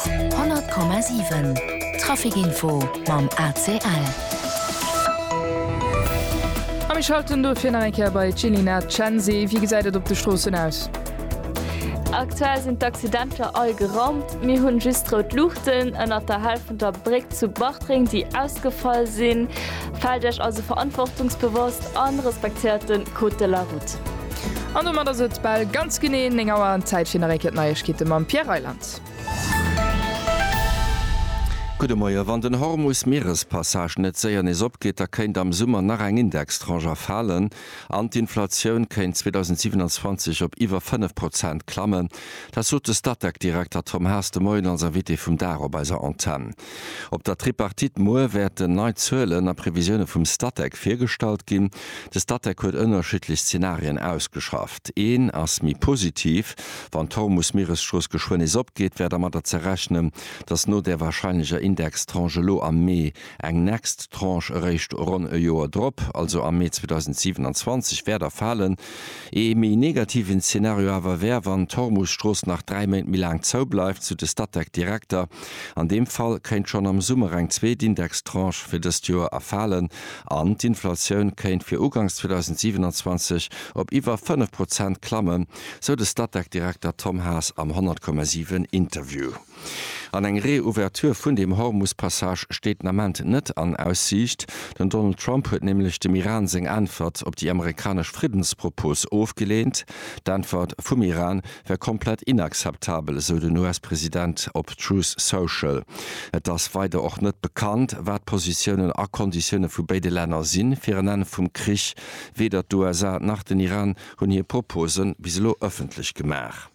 100,7 Traficinfo mam ACL. A mir schalten dofir nach eng Kéier bei d'Jilina Cenzi. Wéi gesäit et op de Stroossen aus? Aktuell sinn d'Accidenter all geraumt. Mir hunn just rout Luuchten ënner der Hal vun der Bréck zu Bartreng, déi ausgefall sinn. Faalt Iech also verantwortungsbewosst an respektéiert den Code de la Route. An domat ass et bal ganz genee 9 Auer an Zäit fir nach eng Kéier d'Neiegkeete mam Pierre Reyland. Gudde Moie. Wann den Hormus-Mierespassage net séier nees opgeet, da kéint am Summer nach eng Indextranche erfalen an d'Inflatioun kéint 2027 op iwwer 5 Prozent klammen. Dat sot de Statec-Direkter Tom Haas de Moien als Invité vum Dag op eiser Antenn. Op der Tripartite muer wäerten nei Zuelen a Previsioune vum Statec virgestallt ginn. De Statec huet ënnerschiddlech Zenarien ausgeschafft. Een ass méi positiv, Wann d'Hormus-Mieresstrooss geschwënn nees opgeet, wär dermadder ze rechnen, datt no där warscheinlecher Indextranche elo am Mee eng next Tranche eréischt ronn e Joer drop, also am Mee 2027, wäert erfalen. Ee méi negativen Zeenario awer wär, wann d'Hormusstrooss nach dräi Méint méi laang zou bleift, sou de Statec-Direkter. An deem Fall kéint schonn am Summer eng zweet Indextranche fir dëst Joer erfalen an d'Inflatioun kéint fir ugangs 2027 op iwwer fënnef Prozent klammen, sou de Statec-Direkter Tom Haas am 100,7 Interview. An eng Reouverture vun dem Hormus-Passage steet den Ament net an Aussiicht. Den Donald Trump huet nämlech dem Iran seng Äntwert op déi amerikanesch Friddenspropos ofgeleent. D'Äntwert vum Iran wär komplett inakzeptabel, esou den US-President op Truth Social. Et ass weider och net bekannt, wat d'Positiounen a Konditioune vu béide Länner si fir en Enn vum Krich. Weder d'USA nach den Iran hunn hir Propose bis elo ëffentlech gemaach.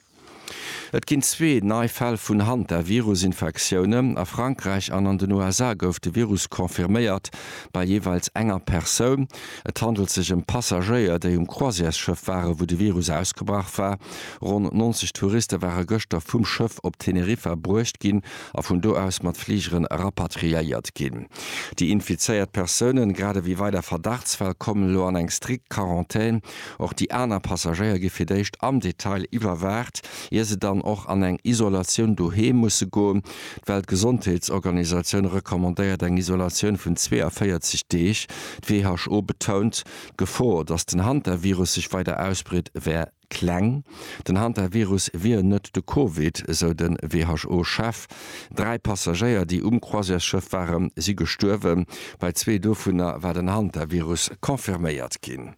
Et ginn zwee nei Fäll vun Hantavirus-Infektioune a Frankräich an an den USA gouf de Virus confirméiert, bei jeeweils enger Persoun. Et handelt sech ëm Passagéier, déi um Croisièresschëff ware wou de Virus ausgebrach war. Ronn 90 Touriste ware gëschter vum Schëff op Teneriffa bruecht ginn a vun do aus mat Fligere rapatriéiert ginn. Déi infizéiert Persounen, grad ewéi weider Verdachtsfäll, kommen elo an eng strikt Quarantän. Och déi aner Passagéier gi fir d'éischt am Detail iwwerwaacht, ier se dann och an eng Isolatioun doheem musse goen. D'Weltgesondheetsorganisatioun recommandéiert eng Isolatioun vun 42 Deeg. D'WHO betount, d'Gefor, datt den Hantavirus sech weider ausbreet, wär kleng. Den Hantavirus wier net de Covid, esou de WHO-Chef. Dräi Passagéier, déi um Croisièresschëff waren, si gestuerwen. Bei zwee dovunner war den Hantavirus confirméiert ginn.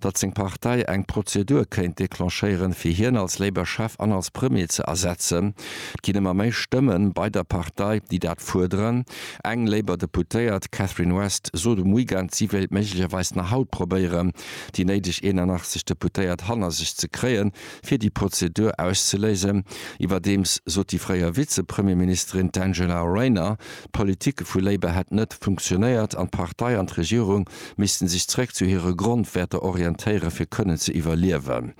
datt seng Partei eng Prozedur kéint declenchéieren, fir hien als Labour-Chef an als Premier ze ersetzen. Et ginn ëmmer méi Stëmme bei der Partei, déi dat fuerderen. Eng Labour-Deputéiert, d'Catherine West, sot um Weekend, si wéilt méiglecherweis nach haut probéieren, déi néideg 81 Deputéiert hanner sech ze kréien, fir déi Prozedur auszeléisen. Iwwerdeems sot déi fréier Vize-Premierministerin, d'Angela Rayner, D'Politike vu Labour hätt net funktionéiert an d'Partei an d'Regierung missten sech zeréck zu hire Grondwäerter orientéieren, fir kënnen ze iwwerliewen.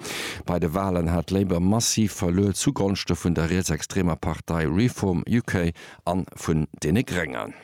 Bei de Walen hat Labour massiv verluer zugonschte vun der rietsextremer Partei Reform UK a vun deene Gréngen.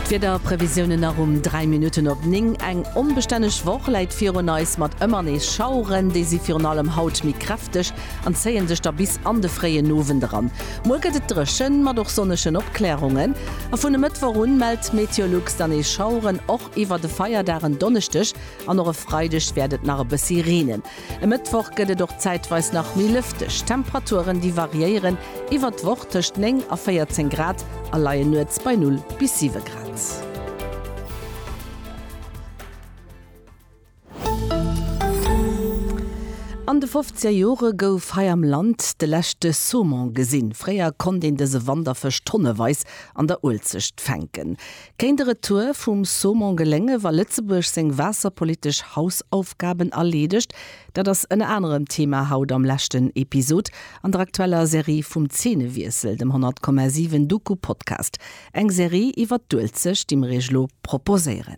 D'Wiederprevisiounen nach um 3 Minutten op 9. Eng onbestänneg Woch läit virun eis mat ëmmer nees Schaueren. Déi si virun allem haut méi kräfteg. an zéien sech da bis an de fréien Owend eran. Muer gëtt et dréchen, mat och sonnegen Opklärungen, a vun e Mëttwoch un mellt Meteolux dann nees Schaueren. Och iwwer de Feierdag en Donneschdeg an och e Freideg wäert et nach e bëssi reenen. E Mëttwoch gëtt et och zäitweis nach méi lëfteg. D'Temperaturen, déi variéieren iwwer d'Woch tëscht 9 a 14 Grad a leien nuets bei 0 bis 7 Grad. An de fofzeger Jore gouf hei am Land de leschte Saumon gesinn. Fréier konnt een dëse Wanderfësch tonneweis an der Uelzecht fänken. Kéint e Retour vum Saumon geléngen, wa Lëtzebuerg seng waasserpolitesch Hausaufgaben erleedegt? Dat ass ënner anerem Thema haut am leschten Episod an der aktueller Serie vum Zeenewiessel, dem 100,7 Doku-Podcast. Eng Serie iwwer d'Uelzecht, déi mir iech elo proposéieren.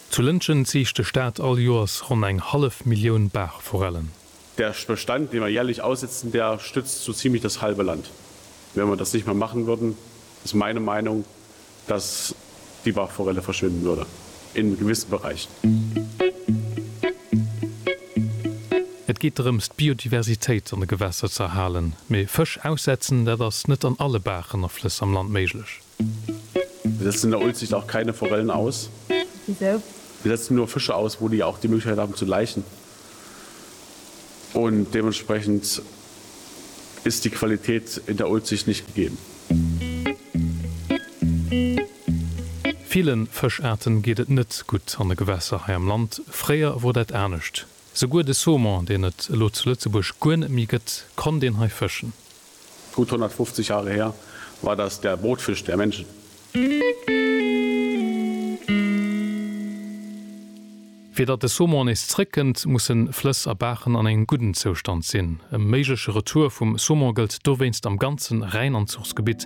Zu Lëntgen ziicht de Staat all Joers ronn eng hallef Millioun Baachforellen. Der Bestand, den wir jährlich aussetzen, der stützt so ziemlich das halbe Land. Wenn wir das nicht mehr machen würden, ist meine Meinung, dass die Baachforelle verschwinden würde in gewissen Bereichen. Et geet drëms, d'Biodiversitéit an de Gewässer ze erhalen. Mee Fësch aussetzen, dat ass net an alle Baachen a Flëss am Land méiglech. Wir setzen der Uelzecht auch keine Forellen aus. Wieso? Wir setzen nur Fische aus, wo die auch die Möglichkeit haben zu laichen. Und dementsprechend ist die Qualität in der Uelzecht nicht gegeben. Villen Fëscharten geet et net gutt an de Gewässer hei am Land. Fréier wor dat anescht. Souguer de Saumon, deen et elo zu Lëtzebuerg guer net méi gëtt, konnt een hei fëschen. Gutt 150 Jahre her war das der Brotfisch der Menschen. Fir datt de Saumon nees zréckkënnt, mussen Flëss a Baachen an engem gudden Zoustand sinn. E méigleche Retour vum Saumon gëllt dowéinst am ganze Rhäinanzuchsgebitt.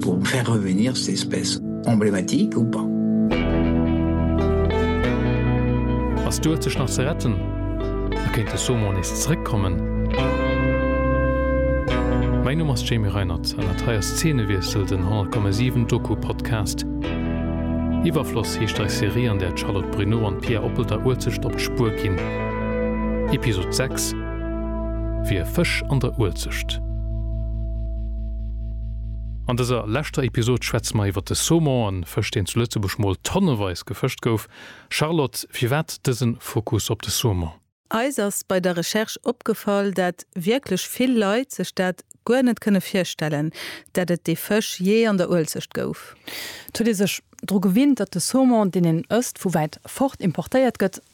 Pour faire revenir ces espèces emblématiques ou pas? Ass d'Uelzecht nach ze retten a kéint de Saumon nees zeréckkommen? Mäin Numm ass Jamie Reinert an dat hei ass Zeenewiessel, den 100,7 Doku-Podcast. Iwwerfloss heescht eis Serie, an där d'Charlotte Bruneau an d'Pia Oppel der Uelzecht op d'Spuer ginn. Episod 6, Wie e Fësch an der Uelzecht. An dëser leschter Episod schwätze mer iwwer de Saumon an Fësch deen zu Lëtzebuerg mol tonneweis gefëscht gouf. Charlotte, firwat dësen Focus op de Saumon? Eis ass bei der Recherche opgefall dat wierklech vill Leit sech dat guer net kënne virstellen dat et dee Fësch jee an der Uelzecht gouf. Et huet ee sech dru gewinnt dat de Saumon deen een ësst vu wäit fort importéiert gëtt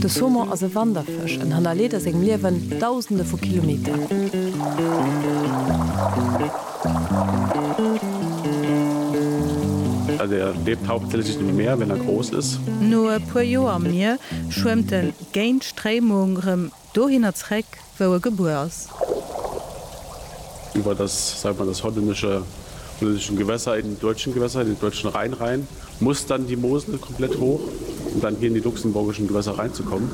De Saumon ass e Wanderfësch, en hannerleet a sengem Liewen Dausende vu Kilometer. Er lebt hauptsächlich im Meer, wenn er groß ist. No e puer Joer am Mier schwëmmt en géint Stréimung rëm. Dohinner zréck, wou e gebuer ass. Iwwer das, sagen wir, das hollännische, hollännische Gewässer in den deutschen Gewässer, in den deutschen Rhein rein, muss dann die Mosel komplett hoch, um dann hier in die luxemburgischen Gewässer reinzukommen.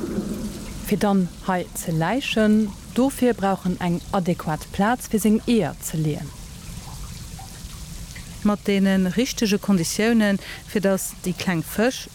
Fir dann hei ze läichen. Dofir brauch en eng adäquat Plaz, fir seng Eeër ze leeën. Mat deene richtege Konditiounen, fir dass déi kleng Fësch.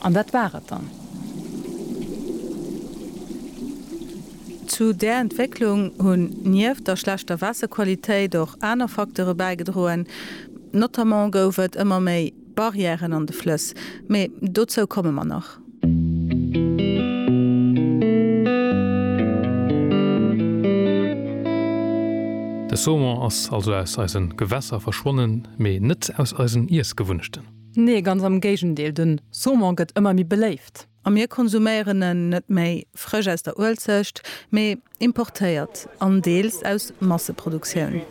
An dat war et dann. Zu där Entwécklung hunn nieft der schlechter Waasserqualitéit och aner Facteure bäigedroen. Notamment gouf et ëmmer méi Barrièren an de Flëss. Mee dozou komme mer nach. De Saumon ass also aus eise Gewässer verschwonnen, mee net aus eisen Iessgewunnechten. Nee, ganz am Géigendeel, den Saumon gëtt ëmmer méi beléift. A mir konsuméieren en net méi frësch aus der Uelzecht, mee importéiert an deels aus Masseproduktioun.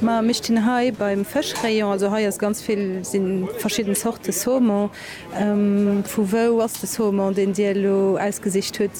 Ma mir stinn hei beim Fëschrayon, also hei ass ganz vill, si verschidden Zorte Saumon. Vu wou ass de Saumon, deen Dir elo ausgesicht hutt?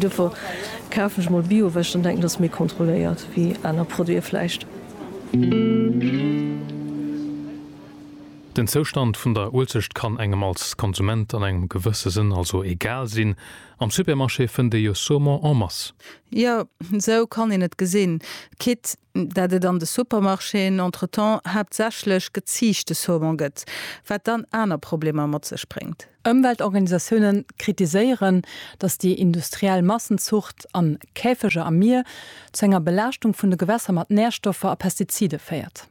Duerfir kafen ech mol Bio, well ech dann denken, dass méi kontrolléiert wéi aner Produiten vläicht. Den Zoustand vun der Uelzecht kann engem als Konsument an engem gewësse Sënn also egal sinn. Am Supermarché fënnt ee jo Saumon en masse. Jo, esou kann een et gesinn. Quitte. dat et an de Supermarchéen entretemps haaptsächlech geziichte Saumon gëtt, wat dann aner Problemer mat sech bréngt. Ëmweltorganisatioune kritiséieren, datt déi industriell Massenzucht an Käfeger am Mier zu enger Belaaschtung vun de Gewässer mat Närstoffer a Pestizide féiert.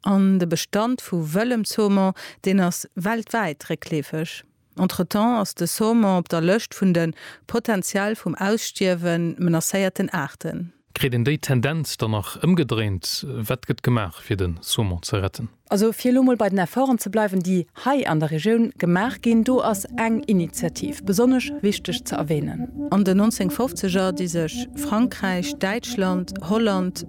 An de Bestand vu wëllem Saumon, deen ass weltwäit réckleefeg. Entretemps ass de Saumon op der Lëscht vun de potenziell vum Ausstierwe menacéierten Aarten. Kritt een déi Tendenz dann nach ëmgedréint? Wat gëtt gemaach fir de Saumon ze retten? Also fir elo mol bei den Efforten ze bleiwen, déi hei an der Regioun gemaach ginn, do ass eng Initiativ besonnesch wichteg ze erwänen. An den 1950er, déi sech Frankräich, Däitschland, Holland,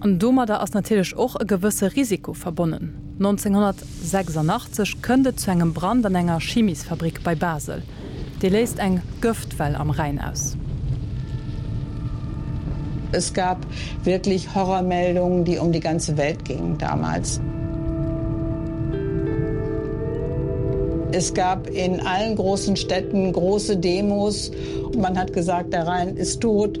An domadder ass natierlech och e gewësse Risiko verbonnen. 1986 kënnt et zu engem Brand an enger Chimisfabrik bei Basel. Dee léist eng Gëftwell am Rhäin aus. Es gab wirklich Horrormeldungen, die um die ganze Welt gingen damals. Es gab in allen großen Städten große Demos. Man hat gesagt, der Rhein ist tot.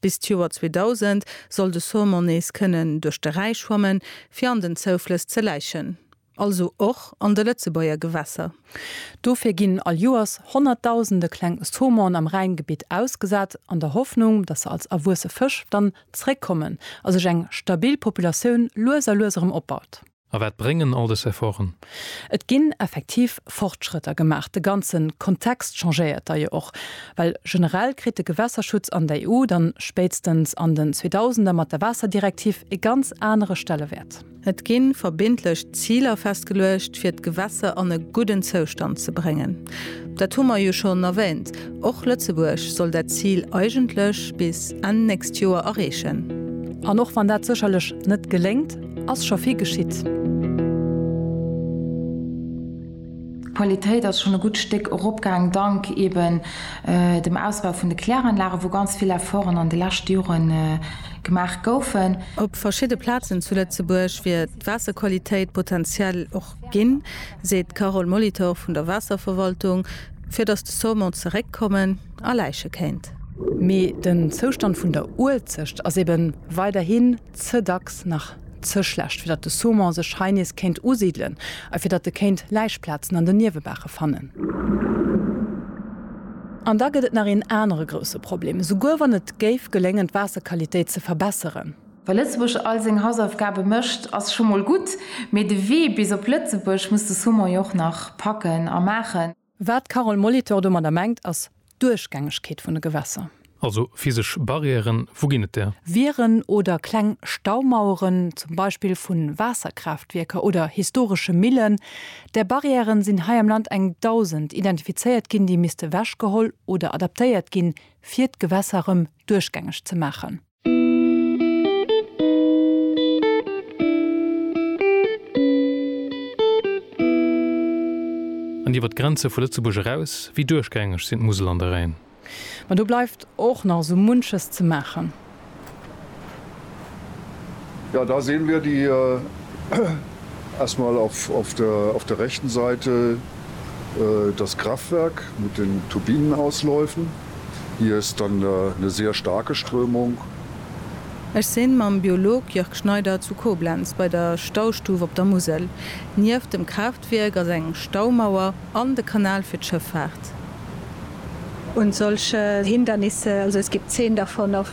Bis d'Joer 2000 soll de Saumon nees kënnen duerch de Räi schwammen, fir an den Zouflëss ze läichen, also och an de Lëtzebuerger Gewässer. Dofir ginn all Joers honnertdausende kleng Saumonen am Rhäingebitt ausgesat, an der Hoffnung, datt se als erwuesse Fësch dann zeréckkommen a sech eng stabil Populatioun lues a lues erëm opbaut. A wat bréngen all des Efforten? Et ginn effektiv Fortschrëtter gemaach. De ganze Kontext changéiert da jo och. Well generell kritt de Gewässerschutz an der EU dann spéitstens an den Zweedausender mat der Waasserdirektiv e ganz anere Stellewäert. Et gi verbindlech Ziler festgeluecht, fir d'Gewässer an e gudden Zoustand ze bréngen. Dat hu mer jo schonn erwähnt, och Lëtzebuerg soll dat Zil eigentlech bis Enn nächst Joer erreechen. An och wann dat sécherlech net geléngt, ass scho vill geschitt. D'Qualitéit ass schonn e gutt Stéck eropgaang, dank eben dem Ausbau vun de Kläranlagen, wou ganz vill Efforten an de leschte Jore gemaach goufen. Op verschidde Plazen zu Lëtzebuerg wier d'Waasserqualitéit potentiell och ginn, seet d'Carole Molitor vun der Waasserverwaltung, fir datt de Saumon zeréckkommen a läiche kéint. Mee den Zoustand vun der Uelzecht ass ebe weiderhi ze dacks nach ze schlecht, fir datt de Saumon sech hei nees kéint usidelen a fir datt e kéint Läichplazen an den Niewebaache fannen. An da gëtt et nach een anere grousse Problem, souguer wann et géif geléngen, d'Waasserqualitéit ze verbesseren. Well Lëtzebuerg all seng Hausaufgabe mécht, ass scho mol gutt, mee de Wee bis op Lëtzebuerg muss de Saumon jo och nach packen a maachen. Wat d'Carole Molitor domadder mengt ass d'Duerchgängegkeet vun de Gewässer. Also physesch Barrièren, wou ginn et där? Wieren oder kleng Staumaueren, zum Beispill vu Waasserkraaftwierker oder historesche Millen. Där Barrièren sinn hei am Land eng Dausend identifizéiert ginn, déi misste wechgeholl oder adaptéiert ginn, fir d'Gewässer rëm duerchgängeg ze maachen. An iwwer d'Grenze vu Lëtzebuerg eraus? Wéi duerchgängeg sinn d'Musel an de Rhäin? Ma do bleift och nach esou munches ze maachen. Ja, da sehen wir die erst mal auf der rechten Seite das Kraftwerk mit den Turbinenausläufen. Hier ist dann ne sehr starke Strömung. Ech sinn mam Biolog Jörg Schneider zu Koblenz bei der Staustuf op der Musel. Nieft dem Kraaftwierk ass eng Staumauer an de Kanal fir d'Schëffaart. Und solche Hindernisse, also es gibt zehn davon, auf.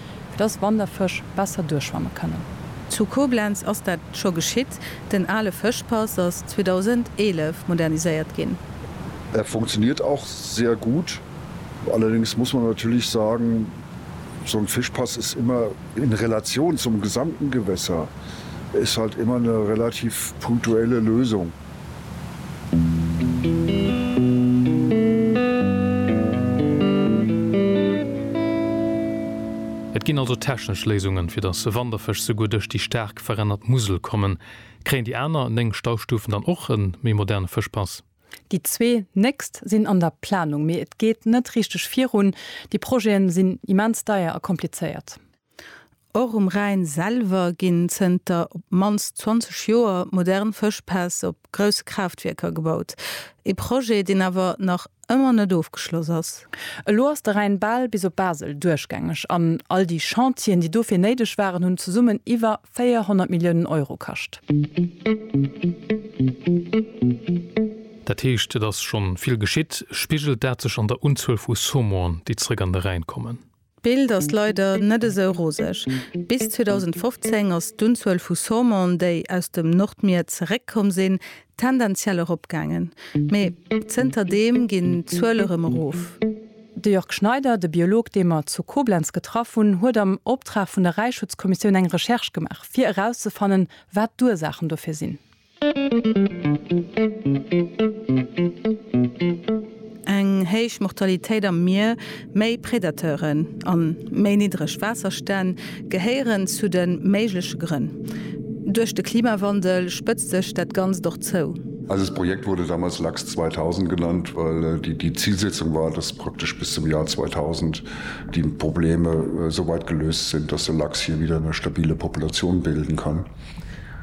fir dass Wanderfësch besser duerchschwamme kënnen. Zu Koblenz ass dat scho geschitt, den ale Fëschpass ass 2011 moderniséiert ginn. Er funktioniert auch sehr gut. Allerdings muss man natürlich sagen, so ein Fischpass ist immer in Relation zum gesamten Gewässer ist halt immer eine relativ punktuelle Lösung. Et ginn also technesch Léisungen, fir datt Wanderfësch souguer duerch déi staark verännert Musel kommen. Kréien déi aner 9 Staustufen dann och e méi moderne Fëschpass? Déi zwee nächst sinn an der Planung, mee et geet net richteg virun. Déi Projeten sinn immens deier a komplizéiert. Och um Rhäin selwer ginn zënter op d'mannst 20 Joer modern Fëschpäss op grousse Kraaftwierker gebaut. Ee Projet, deen awer nach ëmmer net ofgeschloss ass. Elo ass de Rhäin bal bis op Basel duerchgängeg an all déi Chantieren, déi dofir néideg waren, hunn zesummen iwwer 400 Milliounen Euro kascht. Dat heescht, et ass schonn vill geschitt. Spigelt dat sech an der Unzuel vu Saumon, déi zrëck an de Rhäin kommen? D'Bild ass leider net esou roseg. Bis 2015 ass d'Unzuel vu Saumon, déi aus dem Nordmier zeréckkomm sinn, tendenziell eropgaangen, mee zënter deem ginn d'Zuele rëm erof. De Jörg Schneider, de Biolog, dee mer zu Koblenz getraff hunn, huet am Optrag vun der Räichschutzkommissioun eng Recherche gemaach, fir erauszefannen, wat d'Ursaachen dofir sinn. Eng héich Mortalitéit am Mier, méi Predateuren an méi niddreg Waasserstänn gehéieren zu de méigleche Grënn. Duerch de Klimawandel spëtzt sech dat Ganzt och zou. Eises Projekt wurde damals LAX 2000 genannt, well déi Zilsetzung war, dass praktesch bis zum Jar 2000 déi Probleme souweit geléust sinn, dass de Lachs hie widder eng stabile Populatioun bilden kann.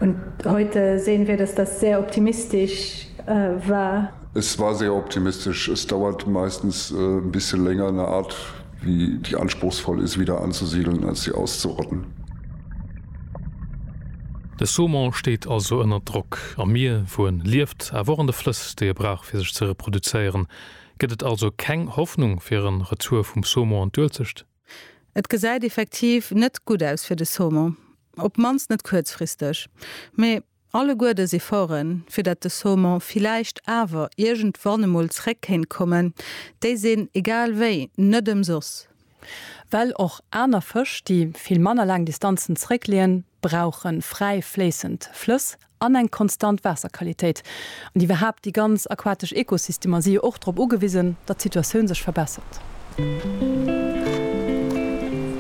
Und heute sehen wir, dass das sehr optimistisch war. Es war sehr optimistisch. Es dauert meistens ein bisschen länger eine Art, wie die anspruchsvoll ist, wieder anzusiedeln, als sie auszurotten. De Saumon steet also ënner Drock. Am Mier, wou en lieft, awer och an de Flëss, déi e brauch, fir sech ze reproduzéieren. Gëtt et also keng Hoffnung fir e Retour vum Saumon an d'Uelzecht? Et gesäit effektiv net gutt aus fir de Saumon, op d'mannst net kuerzfristeg. Mee alleguerdes Efforten, fir datt de Saumon villäicht awer iergendwann emol zréck kéint kommen, déi sinn egal wéi net ëmsoss. Well och aner Fësch, déi vill manner laang Distanzen zréckleeën, brauche fräi fléissend Flëss an eng konstant Waasserqualitéit. An iwwerhaapt, déi ganz aquatesch Ekosystemer si jo och drop ugewisen, datt d'Situatioun sech verbessert.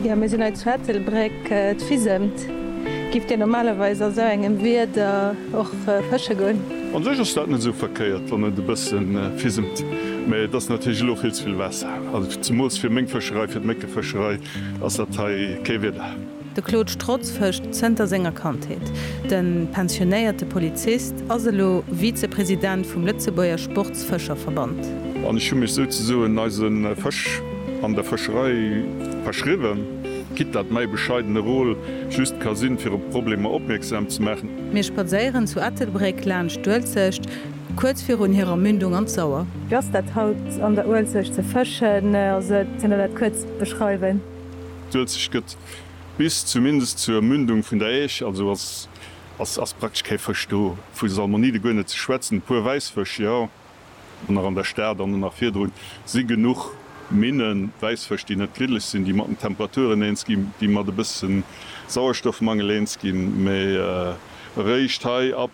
Jo, mir sinn hei zu Ettelbréck, d'Fisemt. Gift Dir normalerweis a sou engem Wieder och fësche goen? An sech ass dat net esou verkéiert, wann et e bësse fisemt, mä et ass natierlech elo vill ze vill Waasser. Also zemools fir meng Fëscherei, fir d'Méckefëscherei ass dat hei kee Wieder. De Claude Strotz fëscht zënter senger Kandheet. De pensionéierte Polizist ass elo Vizepresident vum Lëtzebuerger Sportsfëscherverband. An ech hu mech souzesoen eise Fësch an der Fëscherei verschriwwen, quitte dat mäi bescheidene Rôle just ka sinn, fir op Problemer opmierksam ze maachen. Mir spadséieren zu Ettelbréck laanscht d'Uelzecht, kuerz virun hirer Mündung an d'Sauer. Wéi ass dat haut an der Uelzecht ze fëschen? Ass et, kënnt der dat kuerz beschreiwen? D'Uelzecht gëtt bis zumindest zur Mündung vun der Äisch, also ass praktesch kee Fësch do, vu Salmonide guer net ze schwätzen. E puer Wäissfësch, jo, an nach an der Stad an nach virdrun si genuch Minnen, Wäissfësch, déi net griddlech sinn, déi mat den Temperaturen eens ginn, déi mat e bësse Sauerstoffmangel eens ginn. Mee eréischt hei ab,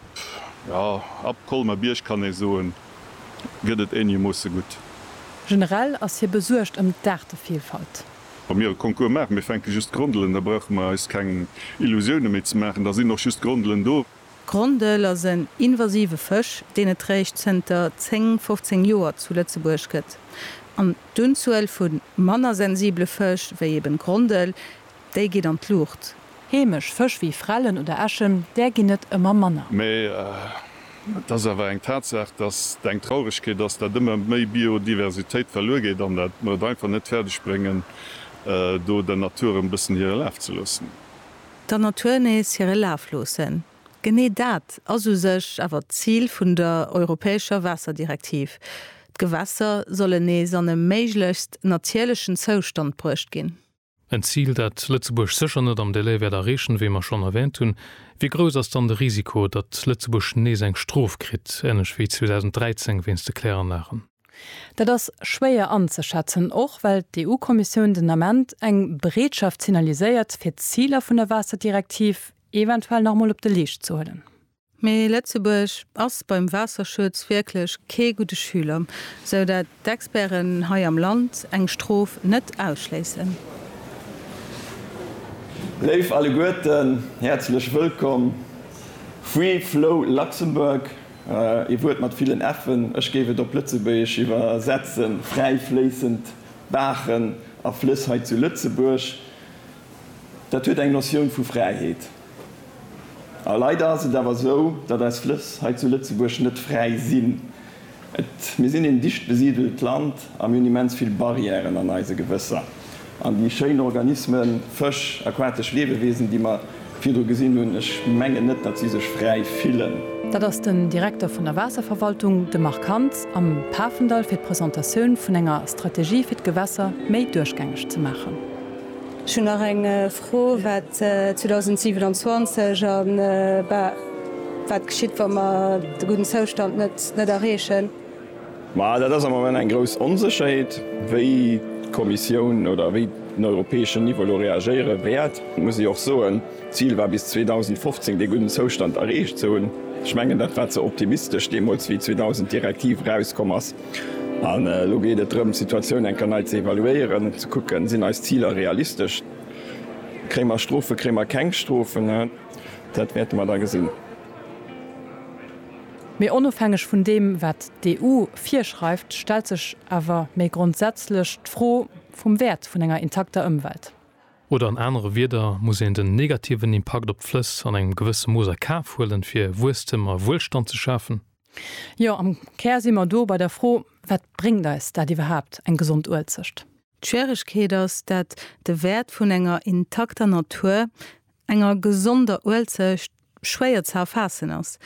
jo, ab Colmer-Bierg, kann ee soen, gëtt et eenegermoosse gutt. Generell ass hie besuergt ëm d'Aartevillfalt. Wa mir e Concours maachen, mir fänke just Grondelen, da brauche mer eis keng Illusioune méi ze maachen, da sinn och just Grondelen do. D'Grondel ass en invasive Fësch, deen et réischt zënter 10, 15 Joer zu Lëtzebuerg gëtt. An d'Unzuel vu manner sensible Fësch, wéi eben d'Grondel, déi geet an d'Luucht. Heemesch Fësch wéi Frellen oder Äschen, där ginn et ëmmer manner. Mee et ass awer eng Tatsaach, dass et eng Trauregkeet ass, dat ëmmer méi Biodiversitéit verluer geet an dat mer et einfach net fäerdeg bréngen, do der Natur erëm e bëssen hire Laf ze loossen. Der Natur nees hire Laf loossen, genee dat ass u sech awer d'Zil vun der europäescher Waasserdirektiv. D'Gewässer sollen nees an e méiglechst natierlechen Zoustand bruecht ginn. En Zil, dat Lëtzebuerg sécher net am Delai wäert erreechen, wéi mer schonn erwähnt hunn. Wéi grouss ass dann de Risiko, datt Lëtzebuerg nees eng Strof kritt, änlech wéi 2013 wéinst de Kläranlagen? Dat ass schwéier anzeschätzen, och well d'EU-Kommissioun den Ament eng Bereetschaft signaliséiert, fir d'Ziler vun der Waasserdirektiv eventuell nach emol op de Leescht ze huelen. Mee Lëtzebuerg ass beim Waasserschutz wierklech kee gudde Schüler, sou dat d'Experten hei am Land eng Strof net ausschléissen. Léif alleguerten, häerzlech wëllkomm! Free Flow Luxembourg, ee Wuert mat villen F'en, ech géif et op Lëtzebuergesch iwwersetzen, fräi fléissend Baachen a Flëss hei zu Lëtzebuerg, dat huet eng Notioun vu Fräiheet. A leider ass et awer esou, datt eis Flëss hei zu Lëtzebuerg net fräi sinn. Et, mir sinn een dicht besidelt Land a mir hunn immens vill Barrièren an eise Gewësser. An déi schéin Organismen, Fësch, aquatesch Liewewesen, déi mer virdru gesinn hunn, ech mengen net, datt si sech fräi fillen. Dat ass den Direkter vun der Waasserverwaltung, de Marc Hans, am Pafendall fir d'Presentatioun vun enger Strategie fir d'Gewässer méi duerchgängeg ze maachen. Ech hunn nach eng Fro wat 2027 a wat geschitt, wa mer de gudden Zoustand net erreechen? Ma dat ass am Moment eng grouss Onsécherheet. Wéi d'Kommissioun oder wéi den europäeschen Niveau elo reagéiere wäert, muss ech och soen, d'Zil war bis 2015 dee gudden Zoustand erreecht ze hunn. Ech mengen, dat war ze optimistesch deemools, wéi 2000 d'Direktiv erauskomm ass. An elo geet et drëm, d'Situatioun eng Kéier nei ze evaluéieren, ze kucken, sinn eis Ziler realistesch. Kréie mer Strofe, kréie mer keng Strofen, dat wäerte mer da gesinn. Mee onofhängeg vun deem, wat d'EU virschreift, stellt sech awer méi grondsätzlech d'Fro vum Wäert vun enger intakter Ëmwelt. Oder an anere Wieder, Muss een den negativen Impakt op d'Flëss an engem gewësse Mooss a Kaf huelen, fir Wuesstem a Wuelstand ze schafen? Jo, am Kär si mer do bei der Fro, Wat bréngt eis dat iwwerhaapt, eng gesond Uelzecht? D'Schwieregkeet ass dat de Wäert vun enger intakter Natur, enger gesonder Uelzecht, schwéier ze erfaassen ass,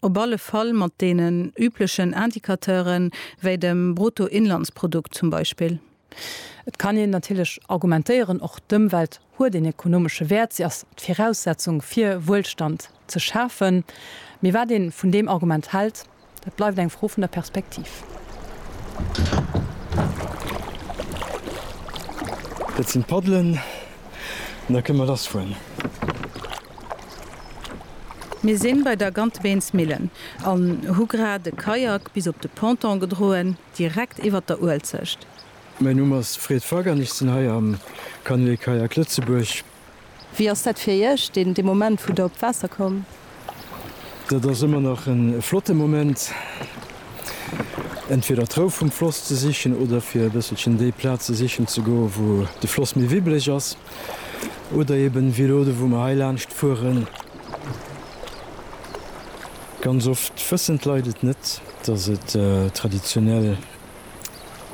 op alle Fall mat deenen üblechen Indicateure wéi dem Bruttoinlandsprodukt zum Beispill. Et kann een natierlech argumentéieren, och d'Ëmwelt huet een ekonomesche Wäert, si ass d'Viraussetzung fir Wuelstand ze schafen. Mee wat ee vun deem Argument hält, Dat bleift eng Fro vun der Perspektiv. Dat sinn d'Paddelen, an da kënne mer lass fueren. Mir sinn bei der Gantebeensmillen an hu grad e Kajak bis op de Ponton gedroen, direkt iwwert der Uelzecht. Mäin Numm ass Fred Fagg an ech sinn hei am Canoë-Kayak Lëtzebuerg. Wéi ass dat fir Iech, deen, dee Moment, wou Der op d'Waasser kommt? Dat ass ëmmer nach e flotte Moment, entweder d'Rou vum Floss ze sichen oder fir e bësselchen déi Plaze sichen ze goen, wou de Floss méi wibbeleg ass. Oder eeben wéi elo, do wou mer heilaanscht fueren. Ganz oft wëssen d'Leit et net, dass et traditionell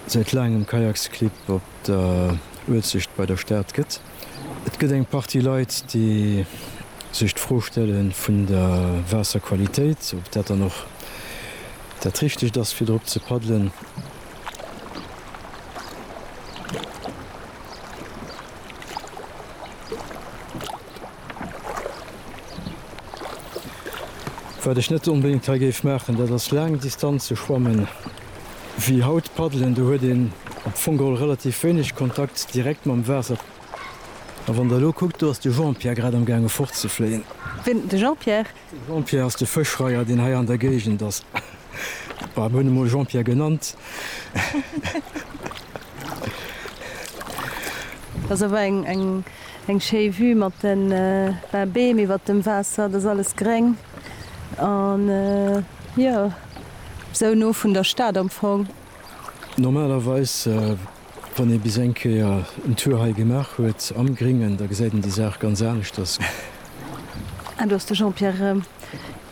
säit laangem Kajaksclub op der Uelzecht bei der Stad gëtt. Et gëtt eng Partie Leit, déi sech d'Fro stelle vun der Waasserqualitéit, ob dat dann och dat Richtegt ass, fir drop ze paddelen. Wat ech net onbedéngt hei géif maachen, dat ass laang Distanze schwammen. Wéi haut paddelen, do huet een op Fongol relativ wéineg Kontakt direkt mam Waasser. A wann der elo kuckt, do ass de Jean-Pierre grad am gaange fort ze fléien. Wien? De Jean-Pierre? De Jean-Pierre ass de Fëschreier, deen hei an der Géigend ass. Bon, mir hunn e mol Jean-Pierre genannt. Dat ass awer eng schéi Vue mat de Beem iwwert dem Waasser. Dat ass alles gréng an jo, Sou no vun der Stad am Fong. Normalerweis, wann ee bis eng Kéier en Tour hei gemaach huet am Gringen, da gesäit een déi Saach ganz aneschters. Ah, do ass de Jean-Pierre erëm.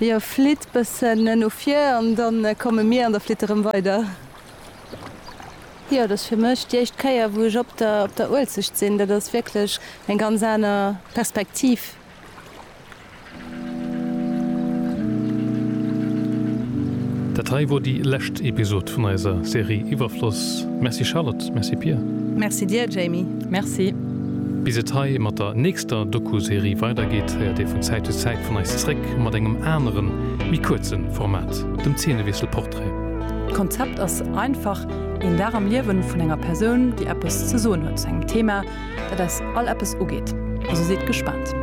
Hie flitt bëssen no vir an da komme mir an der Flitt erëm weider. Jo, dat ass fir mech déi éischt Kéier, wou ech op der Uelzecht sinn. Dat ass wierklech eng ganz aner Perspektiv. Dat hei wor déi lescht Episode vun eiser Serie Iwwerfloss. Merci Charlotte, merci Pia. Merci dir Jamie. Merci. Bis et hei mat der nächster Doku-Serie weider geet, héiert dir vun Zäit zu Zäit vun eis zréck mat engem aneren, méi kuerzen Format, dem Zeenewiesselportrait. D'Konzept ass einfach, Een Dag am Liewen vun enger Persoun, déi eppes ze soen huet zu engem Thema Dat eis all eppes ugeet, also sidd gespaant.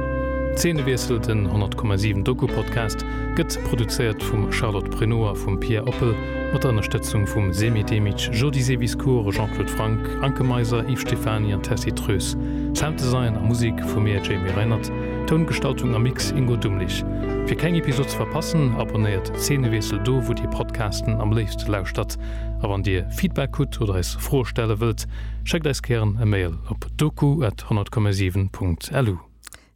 Zeenewiessel, den 100,7 Doku-Podcast gëtt produzéiert vum Charlotte Pruneau a vum Pia Oppel mat der Ënnerstëtzung vum Semih Demic, Jody Seviscourt, Jean-Claude Franck, Anke Meiser, Yves Stephany an Tessy Treus. Sounddesign a Musek vu mir, Jamie Reinert. Toungestaltung a Mix, Ingo Dumlich. Fir keng Episod ze verpassen, abonnéiert Zeenewiessel do, wou Dir Podcasten am léifste lauschtert. A wann Dir Feedback hutt oder eis Froe stelle wëllt, schéckt eis gären e Mail op doku at 100,7 Punkt lu.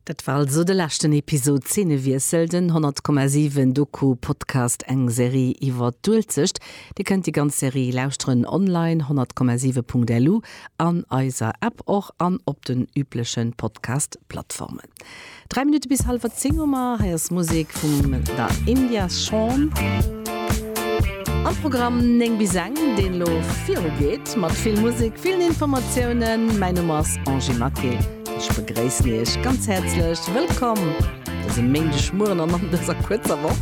Dat war also de leschten Episod Zeenewiessel, den 100,7 Doku Podcast, eng Serie iwwer d'Uelzecht. Dir kënnt déi ganz Serie lauschteren online, 100,7 Punkt lu, an eiser App och an op den üblechen Podcast Plattformen. Dräi Minutte bis hallwer zéng hu mer. Hei ass Musek vum Da India Shawn. Am Programm néng bis eng, deen elo viru geet, mat vill Musek, villen Informatiounen. Mäin Numm ass Angie Maquet. Ech begréissen Iech ganz häerzlech. Wëllkomm dëse Méindegmueren an an dëser kuerzer Woch.